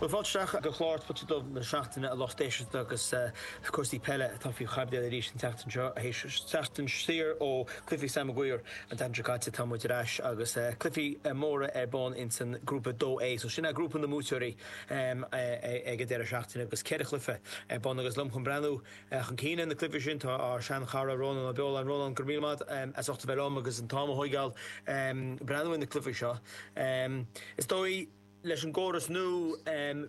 Bhuel, fáilte isteach go clár Spota Dubh na seachtaine, a lucht éisteachta, agus cúrsaí peile atá faoi chaibidil arís an tseachtain seo, théis seachtain saor ó chluichí Sam Maguire an tseachtain seo caite, tá muid ar ais, agus cluichí móra ar bun ins an Grúpa 2A, so sin é grúpa na mbuaiteoirí ag an deireadh seachtaine, agus ceithre chluiche ar bun, agus liom chun breathnú Chun cinn ar na cluichí sin tá ár seanchara Rónán Ó Beoláin. Rónán, go raibh míle maith as ucht a bheith liom agus an t-am a thóigeáil ag breathnú ar na cluichí seo. Is dóigh, leis an gcóras nua,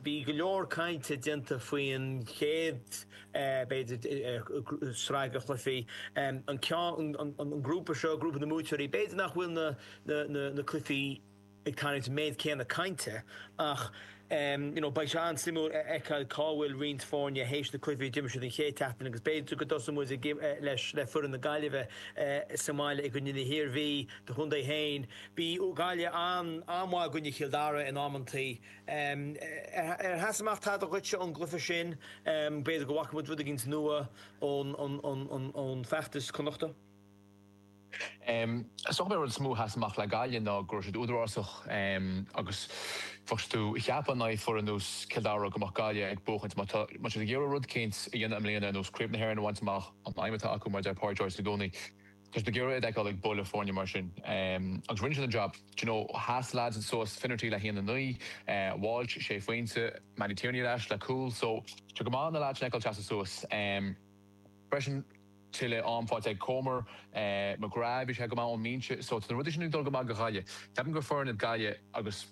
bhí go leor cainte déanta faoin chéad, b'fhéidir, sraith de chluichí. An ceann, an grúpa seo, grúpa na mbuaiteoirí, b'fhéidir nach bhfuil na cluichí. ag tarraingt an méid céanna cainte ach you know beidh sé an-suimiúil a fheiceáil cá bhfuil roinnt foirne théis na cluichí a d'imir siad an chéad tseachtain agus b'fhéidir go dtosóidh muid le foireann na Gaillimhe sa mbaile i gcoinne na hIarmhí, do chontae féin. Bhí Gaillimh an-mhaith i gcoinne Chill Dara in amantaí. Ar sheas amach tada dhuitse ón gcluiche sin? B'fhéidir go bhfaca muid rud éigin nua ón bhfeachtas Connachta? Is dócha b'é an rud is mó a sheas amach le Gaillimh ná go raibh siad údarásach agus bheadh tú ag ceapadh in aghaidh foireann ar nós Cill Dara go mbeadh Gaillimh ag buachaint. Má tá siad ag iarradh rud éicint a dhéanamh i mbliana ar nós Craobh na hÉireann a bhaint amach, an aidhm atá acu, mar a deir Pádraic Joyce i gcónaí, tá tú ag iarradh iad a fheiceáil ag buaileadh foirne mar sin. Agus rinne siad an jab. Do you know, sheas leaids suas, Finnerty le haon, a naoi, Walsh sé phointe, Mattie Tierney ar ais le cúl. So, tá sé go maith na leaids sin a fheiceáil ag seasamh suas freisin. tuilleadh am faighte ag Comer. McGrath, bhí sé go maith ón mbinse so tá na rudaí sin ag dul go maith do Ghaillimh. Ceapaim gur foireann iad Gaillimh agus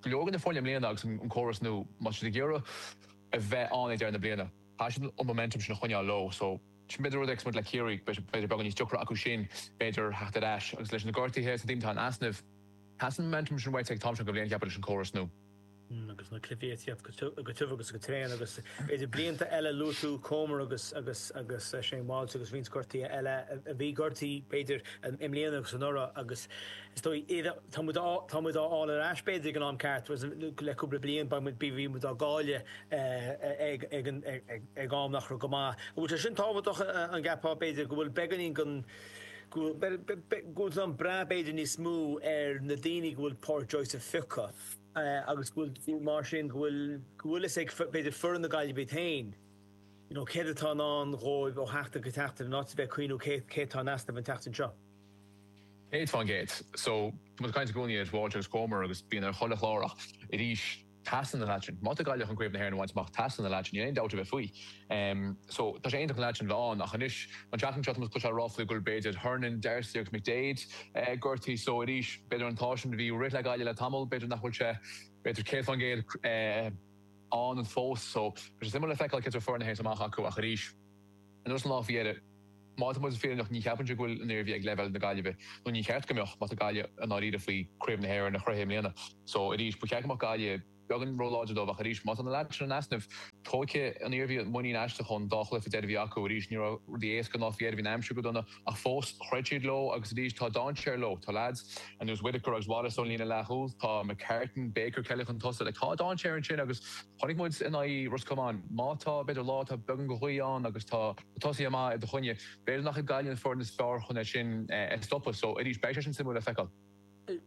go leor de na foirne i mbliana agus an córas nua má tá siad ag iarraidh a bheith ann ag deireadh na bliana, teastaíonn an momentum sin a choinneáil leo so b'fhéidir rud é agus muid le Ciarraí, b'fhéidir beagán níos deacra acu sin b'fhéidir theacht ar ais agus leis na gortaithe is na daoine atá in easnamh, teastaíonn an momentum sin uait ag an am seo den bhliain, cheapfá, leis an gcóras nua. agus na cluichí ag tíocht go tiubh agus go tréan agus b'fhéidir blianta eile luaigh tú Comer agus agus Shane Walsh agus roinnt gortaí eile a bhí gortaí b'fhéidir i mbliana agus anuraidh agus is dóigh iad tá muid tá muid á fháil ar ais b'fhéidir ag an am ceart was le cúpla bliain beidh muid bhí muid á gcailleadh ag ag ag ag ag am nach raibh go maith an bhfuil sé sin tábhachtach an gceapfá b'fhéidir go bhfuil beagáinín den Go bhfuil an breathnú b'fhéidir níos mó ar na daoine go bhfuil Pádraic Joyce ag piocadh agus go bhfuil, mar sin, go bhfuil go bhfuil fhios ag, b'fhéidir, foireann na Gaillimhe iad féin you know céard atá i ndán dhóibh ó sheachtain go seachtain in áit a bheith ag cuimhniú cé cé atá in easnamh an tseachtain seo. Céad fán gcéad. So, tá muid ag caint i gcónaí ar Walsh agus Comer agus bíonn ar chuile chlár ach arís. teastaíonn an leaid sin. Má tá Gaillimh chun craobh na hÉireann a bhaint amach, teastaíonn an leaid sin, níl aon dabht ar bith faoi. So, tá sé iontach an leaid sin a bheith ann. Ach anois, an tseachtain seo, tá muid ag cloisteáil ráflaí go bhfuil, b'fhéidir, Hernan, D'Arcy agus McDaid gortaithe. So, arís, b'fhéidir an t-ádh sin a bhí ag rith le Gaillimh le tamall, b'fhéidir nach bhfuil sé, b'fhéidir, 100% ann fós. So, beidh sé suimiúil le feiceáil cén sórt foireann a ainmneofar amach acu. Ach arís. Anuas ar an lá faoi dheireadh. Má tá muid fírinneach ní cheapfainnse go bhfuil an Iarmhí ag leibhéal na Gaillimhe, nó ní cheart go mbeadh, má tá Gaillimh i ndáiríre faoi Craobh na hÉireann a chrochadh i mbliana. So, arís, ba cheart go mbeadh Gaillimh beagán róláidir dóibh ach arís, má tá na leaids sin in easnamh, tóigfidh an Iarmhí muinín as an gcéad dá chluife a bhí acu. Arís, ní raibh rudaí éasca an lá faoi dheireadh, bhí an aimsir go dona. Ach fós, throid siad leo agus arís tá dainséar leo. Tá leaids ar nós Whitaker agus Wallace ón líne leathchúil, tá McCartan, Baker, Kelly chun tosaigh. Like, tá dainséar ansin agus chonaic muid in aghaidh Ros Comáin, má tá, b'fhéidir, lá atá beagán go haoith ann agus tá tosaithe maithe i do choinne, b'fhéidir nach ag Gaillimh an foireann is fearr chun é sin a stopadh. So, arís, beidh sé sin suimiúil le feiceáil.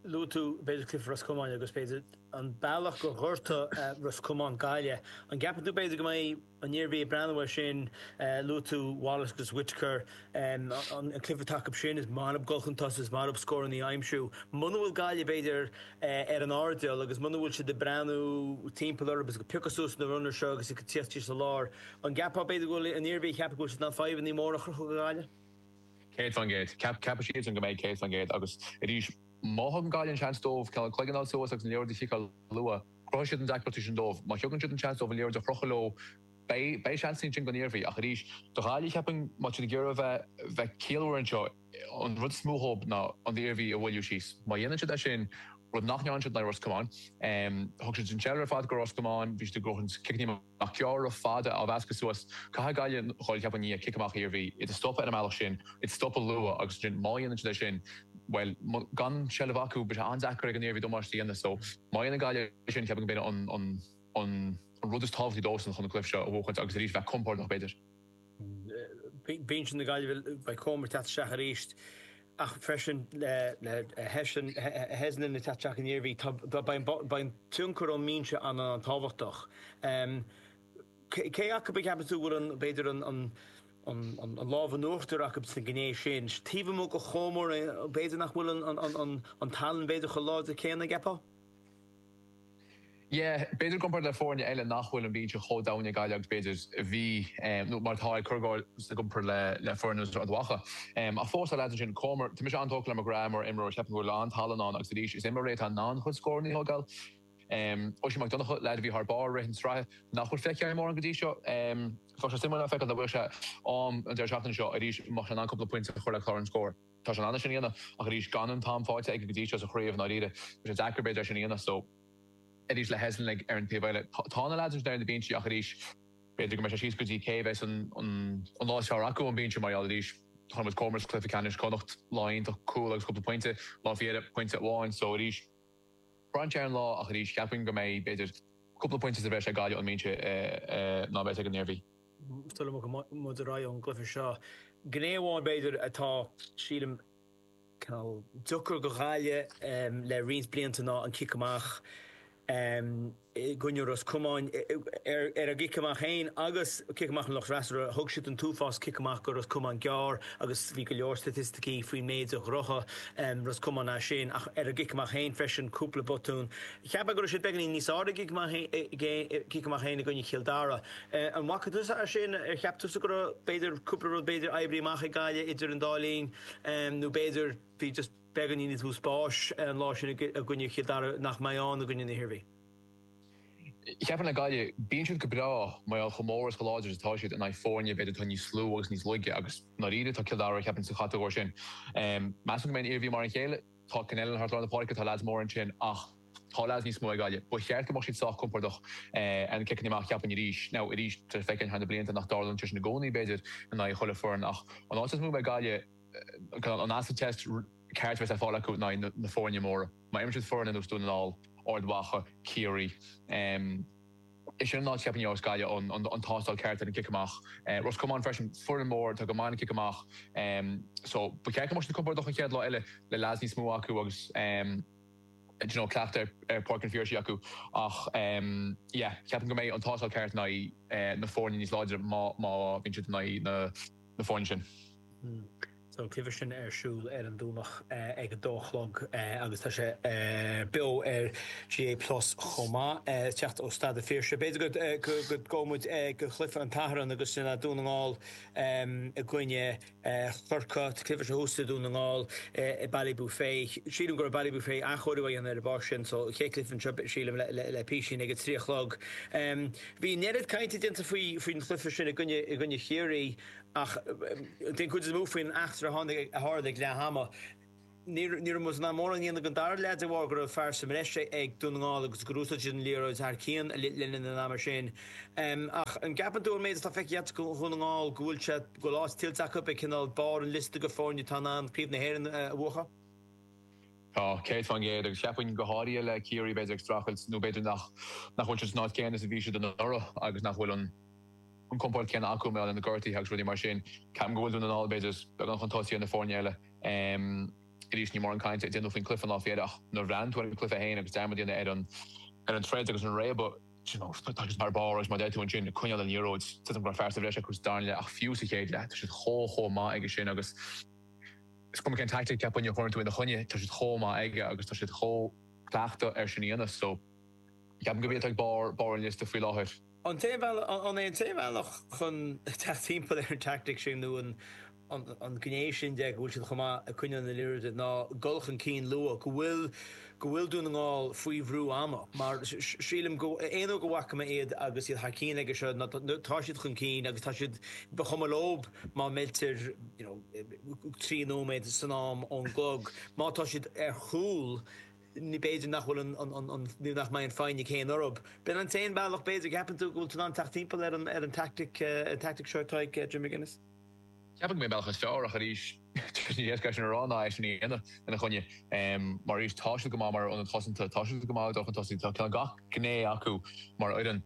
Luaigh tú b'fhéidir cluife Ros Comáin agus b'fhéidir an bealach gur ghortaigh Ros Comáin, Gaillimh. An gceapann tú b'fhéidir go mbeidh an Iarmhí ag breathnú air sin? Luaigh tú Wallace agus Whitaker, an cluife atá acu sin, ó thaobh dul chun tosaigh, is ó thaobh scórannaí a aimsiú. Muna bhfuil Gaillimh b'fhéidir ar an airdeall agus muna bhfuil siad ag breathnú timpeall orthu agus ag piocadh suas na runners seo agus ag tíocht síos sa lár, an gceapfá b'fhéidir go bhfuil an Iarmhí ag ceapadh go bhfuil siad in ann fadhbannaí móra a chruthú do Ghaillimh? 100%. Ceap, ceapfaidh siadsan go mbeidh 100% agus arís, má thugann Gaillimh an seans dóibh a gcloigeann a fháil suas agus an liathróid a chiceáil luath, cruthóidh siad na deacrachtaí sin dóibh. Má thugann siad an seans dóibh an liathróid a chrochadh leo, beidh, beidh seans ansin don Iarmhí. Ach arís, do Ghaillimh, cheapfainn, má tá siad ag iarraidh a bheith, bheith ciallmhar anseo, an rud is mó dhóib ná an Iarmhí a mhoilliú síos. Má dhéanann siad é sin, rud nach ndearna siad, in aghaidh Ros Comáin, thug siad an seilbh ar fad do Ros Comáin, bhí siad ag gnóthachtáil ciceanna. Amach gearr fada á mheascadh suas. Caithfidh Gaillimh dul go hard i ndiaidh cic amach Iarmhí, iad a stopadh ar an mbealach sin, iad a stopadh luath, agus ansin má dhéanann siad é sin, bhuel, gan seilbh acu, beidh sé an-deacair ag an Iarmhí damáiste a dhéanamh. So, má dhéanann Gaillimh é sin, ceapaim go mbeidh an rud is tábhachtaí dóibhsean chun an cluiche seo a bhuachaint agus arís bheith compordach, b'fhéidir. Binse na Gaillimhe beidh Comer ag teacht isteach arís ach freisin le Heslin ag teacht isteach don Iarmhí. Beidh an tionchar ón mbinse an an-tábhachtach. Cé acu a cheapann tú bhfuil an b'fhéidir an an lámh in uachtar acu sa gné sin? Taobh amuigh de Chomer b'fhéidir nach bhfuil an an an tallann b'fhéidir chomh láidir céanna an gceapfá? Yeah, b'fhéidir i gcomparáid le foirne eile nach bhfuil an binse chomh domhain ag Gaillimh agus b'fhéidir a bhí nó mar atá ag cur go háirid i gcomparáid le le foireann Ard Mhacha. Ach fós tá leaids ansin Comer, tá mise an-tógtha le McGrath mar imreoir, ceapaim go bhfuil a lán tallann ann agus arís is imreoir é atá in ann a chuid scóranna a thógáil. Oisín Mac Donnacha, leaid a bhí thar barr i rith na sraithe nach bhfuil feicthe againn mórán go dtí seo. Bheadh sé suimiúil a fheiceáil an bhfuil sé ann an deireadh seachtaine seo arís, bheadh sé in ann cúpla pointe a chur le clár an scóir. Tá sé in ann é sin a dhéanamh, ach arís, gan an t-am fáighte aige go dtí seo sa chraobh, ndáiríre, tá sé deacair, b'fhéidir, é sin a dhéanamh. So, arís, le Heslin ar an taobh eile, tá na leaids ar na binsí, ach arís, b'fhéidir go mbeidh sé síos go dtí cé a bheas an lá is fearr acu ón mbinse, mar gheall, arís, chonaic muid Comer sa gcluiche ceannais Chonnacht, lá iontach, cúl agus cúpla pointe, lá faoi dheireadh, pointe amháin. So, arís, braitheann sé ar an lá, ach arís, cheapfainn go mbeidh, b'fhéidir, cúpla pointe sa bhreis ag Gaillimh ón mbinse ná a bheas ag an Iarmhí. sula mbogfaimid ar aghaidh ón gcluiche seo. Gné amháin, b'fhéidir, atá, sílim, cineál deacair do Ghaillimh le roinnt blianta ná an cic amach i gcoinne Ros Comáin. Ar an gcic amach féin agus cic amach an lucht freasúra, thug siad an t-uafás cic amach do Ros Comáin gearr agus bhí go leor staitisticí faoin méid a ghnóthaigh Ros Comáin as sin. Ach ar an gcic amach féin freisin, cúpla botún. Cheap mé go raibh siad beagáinín níos fearr ar an gcic amach féin i gcoinne Chill Dara. An bhfaca tusa é sin? Ar cheap tusa go raibh, b'fhéidir, cúpla rud, b'fhéidir, oibrithe amach ag Gaillimh idir an dá linn? Nó b'fhéidir, bhí just beagáinín níos mó spáis an lá sin i gcoinne Chill Dara nach mbeidh ann i gcoinne na hIarmhí? Sea, cheapfainn le Gaillimh, bíonn siad go breá, mar gheall chomh mór is chomh láidir is atá siad, in aghaidh foirne, b'fhéidir, atá níos lú agus níos laige. Agus, i ndáiríre, tá Cill Dara, cheapfainn, sa chatagóir sin. Measaim go mbeidh an Iarmhí mar an chéile. Tá Connellan thart lár na páirce, tá leaids mór ansin ach tá leaids níos mó ag Gaillimh. Ba cheart go mbeadh siad sách compordach ar na ciceanna amach, cheapfainn arís. Now, arís, tá sé feicthe thar na blianta nach dtarlaíonn sé sin i gcónaí, b'fhéidir, in aghaidh chuile foireann ach an áit is mó a mbeidh Gaillimh, an acid test, ceart a bheas ar fáil acu in aghaidh na foirne móra. Má imríonn siad foirne ar nós Dún na nGall, Ard Mhacha, Ciarraí, Is é sin an áit cheapfainn a bheas Gaillimh, an tástáil ceart ar an gcic amach. Ros Comáin freisin, foireann mór atá go maith ag an gcic amach so ba cheart go mbeadh siad compordach an chéad lá eile le leads níos mó acu agus you know cleachtadh ar Páirc an Phiarsaigh acu ach yeah ceapaim go mbeidh an tástáil ceart in aghaidh na foirne níos láidre má bhíonn siad in aghaidh na foirne sin. Tá an cluiche sin ar siúl ar an Domhnach ag a dó a chlog agus tá sé beo ar GAA plus chomh maith. Ag teacht ó Staid a' Phiarsaigh. B'fhéidir go ngabhfadh muid ag cluichí an tSathairn agus sin é, Dún na nGall i gcoinne Chorcaigh. Tá an cluiche seo thuas i Dún na nGall i Ballybofey. Sílim gur i Ballybofey athchóiriú á dhéanamh ar an bpáirc sin so chéad cluiche anseo sílim le písín ag a trí a chlog. Bhí an oiread cainte déanta faoin chluiche sin i gcoinne Chiarraí, Ach den chuid is mó faoin eachtra a tharla ag leath ama, ní raibh muid in ann mórán a dhéanamh den dara leath de bharr go raibh fear sa mbreis ag Dún na nGall agus gur úsáid siad an liathróid thar cionn le linn an ama sin. Ach an gceapann tú ón méid atá feicthe agat faoi Dhún na nGall go bhfuil sé, go bhfuil áit tuillte acu ag cineál barr an liosta de foirne atá in ann Craobh na hÉireann a bhuachan? Tá, céad faoin gcéad, agus cheapfainn go háirithe le Ciarraí b'fhéidir ag streachailt nó b'fhéidir nach bhfuil siad san áit chéanna is a bhí siad anuraidh agus nach bhfuil an an compord céanna acu, mé na gortuithe agus rudaí mar sin. Ceapaim go bhfuil Dún na nGall, b'fhéidir, beagán chun tosaigh ar na foirne eile. Arís, níl mórán cainte á dhéanamh faoin cluiche an lá faoi dheireadh ach nuair a bhreathnaigh tú ar an cluiche féin agus dearmad a dhéanamh ar an troid agus an réabadh, you know, agus thar barr agus mar a deir tú ansin, coinneáil an liathróid, tuigim go raibh fear sa bhreis acu sa darna leath ach fiú sa chéad leath, tá siad chomh, chomh maith aige sin agus is cuma cén taictic a chuireann tú ina choinne, tá siad chomh maith aige agus tá siad chomh cleachta air sin a dhéanamh. So, ceapaim gurb iad atá ag barr an liosta faoi láthair. An t-aon bhealach, an é an t-aon bhealach chun teacht timpeall ar an teaictic sin nó an gné sin de go bhfuil siad chomh maith ag coinneáil na liathróide, ná dul chun cinn luath, go bhfuil, go bhfuil Dún na nGall faoi bhrú ama. Mar sílim go, aon uair go bhfaca mé iad agus iad thar cinn aige seo, ná tá siad chun cinn agus tá siad, ba chuma leob má meiltear, you know, trí nóiméad san am ón gclog, má tá siad ar chúl, Ní, b'fhéidir nach bhfuil an, an, an, ní nach mbeidh an foighne céanna orthub. B'in an t-aon bhealach, b'fhéidir. Ceapann tú go bhfuil tú in ann teacht timpeall ar an, ar an tactic, ar an tactic seo atá ag Jim McGuinness? Ceapaim go mb'é an bealach is fearr, ach arís, níos éasca é sin a rá ná é sin a dhéanamh ina choinne. Mar arís, tá siad go maith mar aonad cosanta, tá siad go maith ag dul chun tosaigh, tá gach gné acu mar fhoireann.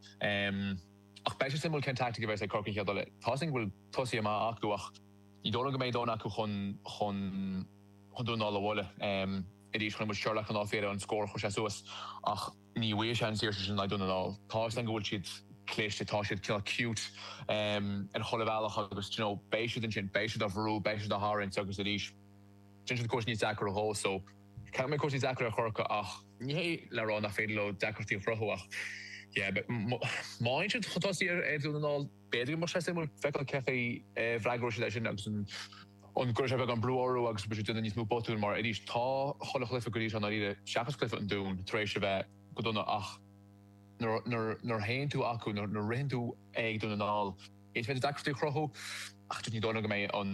Ach beidh sé suimiúil cén tactic a bheas ag Corcaigh an chéad dul eile. Tá 's againn go bhfuil tosaithe maithe acu ach ní dóigh liom go mbeidh dóthain acu chun, chun, chun Dún na nGall a bhualadh. Arís, chonaic muid Sherlock an lá faoi dheireadh an scór a chuir sé suas ach ní bhfuigheadh sé an saoirse sin in aghaidh Dún na nGall. Tá 'fhios a'm go bhfuil siad cliste, tá siad cineál cute ar chuile bhealach agus d'you know, beidh siad ansin, beidh siad a' bhrú, beidh siad a' tharraingt agus arís déanfaidh siad cúrsaí níos deacra dhó so ceapaim go mbeidh cúrsaí deacair ar Chorcaigh ach ní hé le rá nach féidir leo deacrachtaí a chruthú ach yeah but má fhaigheann siad chun tosaigh ar Dhún na nGall, B'fhéidir go mbeadh sé suimiúil feiceáil cé chaoi a bhfreagróidh siad é sin agus an gcuirfidh sé beagán brú orthu agus an mbeidh siad ag déanamh níos mó botún mar, arís, tá chuile chluiche go dtí seo i ndáiríre, seachas cluiche an Dúin, tar éis a bheith go dona ach nuair a théann tú acu, nuair a ritheann tú ag Dún na nGall, is féidir deacrachtaí a chruthú ach just ní dóigh liom go mbeidh an.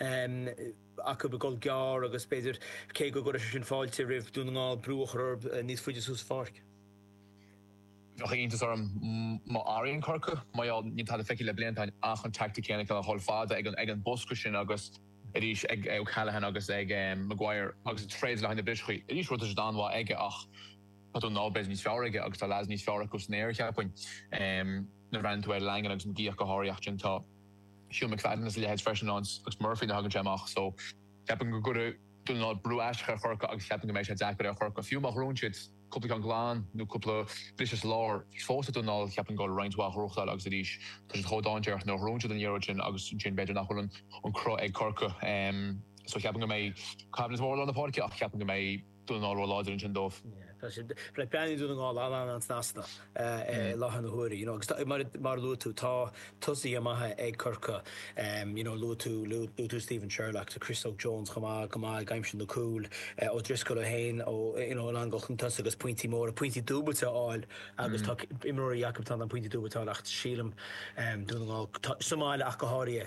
acu ag dul gearr agus, b'fhéidir, cé go gcuirfeadh sé sin fáilte roimh Dún na nGall, brú a chur níos faide suas an pháirc. Bheadh iontas orm má athraíonn Corcaigh, mar gheall, níl tada feicthe le blianta ach an teaictic chéanna acu a dhul fada ag an bosca sin agus arís ag O'Callaghan agus ag Maguire agus troid le haghaidh na brioscaí. Arís, rud atá siad an-mhaith aige ach tá Dún na nGall, b'fhéidir, níos fearr aige agus tá leads níos fearr acu san aer, cheapfainn, nuair a bhreathnaíonn tú ar Langan agus McGee ach go háirithe ach ansin tá. So McFadden is a leithéid freisin agus Murphy nuair a thagann sé amach so ceapaim go gcuirfidh Dún na nGall brú aisteach ar Chorcaigh agus ceapaim go mbeidh sé deacair ar Chorcaigh, fiú má ghnóthaíonn siad cúpla ceann glan nó cúpla briseadh sa lár, fós ag Dún na nGall ceapaim go bhfuil roinnt mhaith athchúrsáil agus arís tá siad chomh dainséarach nuair a ghnóthaíonn siad an liathróid sin agus ansin b'fhéidir nach bhfuil an cruth ag Corcaigh so ceapaim go mbeidh coimhlint mhór lár na páirce ach ceapaim go mbeidh Dún na nGall ró-láidir ansin dóibh. Tá siad breathnaíonn Dún na nGall an-an-an-snasta i láthair na huaire you know agus tá mar mar a luaigh tú tá tosaithe maithe ag Corcaigh you know luaigh tú luaigh tú Stephen Sherlock tá Chris Óg Jones chomh maith go maith ag aimsiú na cúil O'Driscoll ó shin ó you know ag dul chun tosaigh agus pointí móra pointí dúbailte a fháil agus tá imreoirí acu atá in ann pointí dúbailte a fháil ach sílim Dún na nGall tá sa mbaile ach go háirithe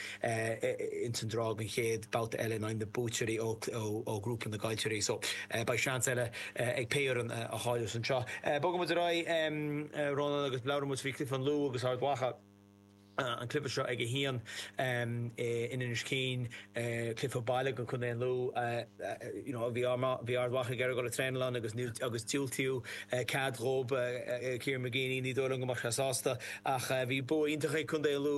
ins an draw don chéad babhta eile in aghaidh na buaiteoirí ó ghrúpa na gcaillteoirí so beidh seans eile ag pé fhoireann a chailleas anseo. Bogfaimid ar aghaidh Rónán agus labhróimid faoi chluiche an Lú agus Ard Mhacha, an cluiche seo ag a haon in Inis Céin, cluiche baile don contae an Lú you know bhí Ard Mhacha ag iarraidh dul ag traenáil ann agus níl agus diúltaíodh cead dhób Kieran McGeeney ní dóigh liom go mbeadh sé sásta ach bhí bua iontach ag contae an Lú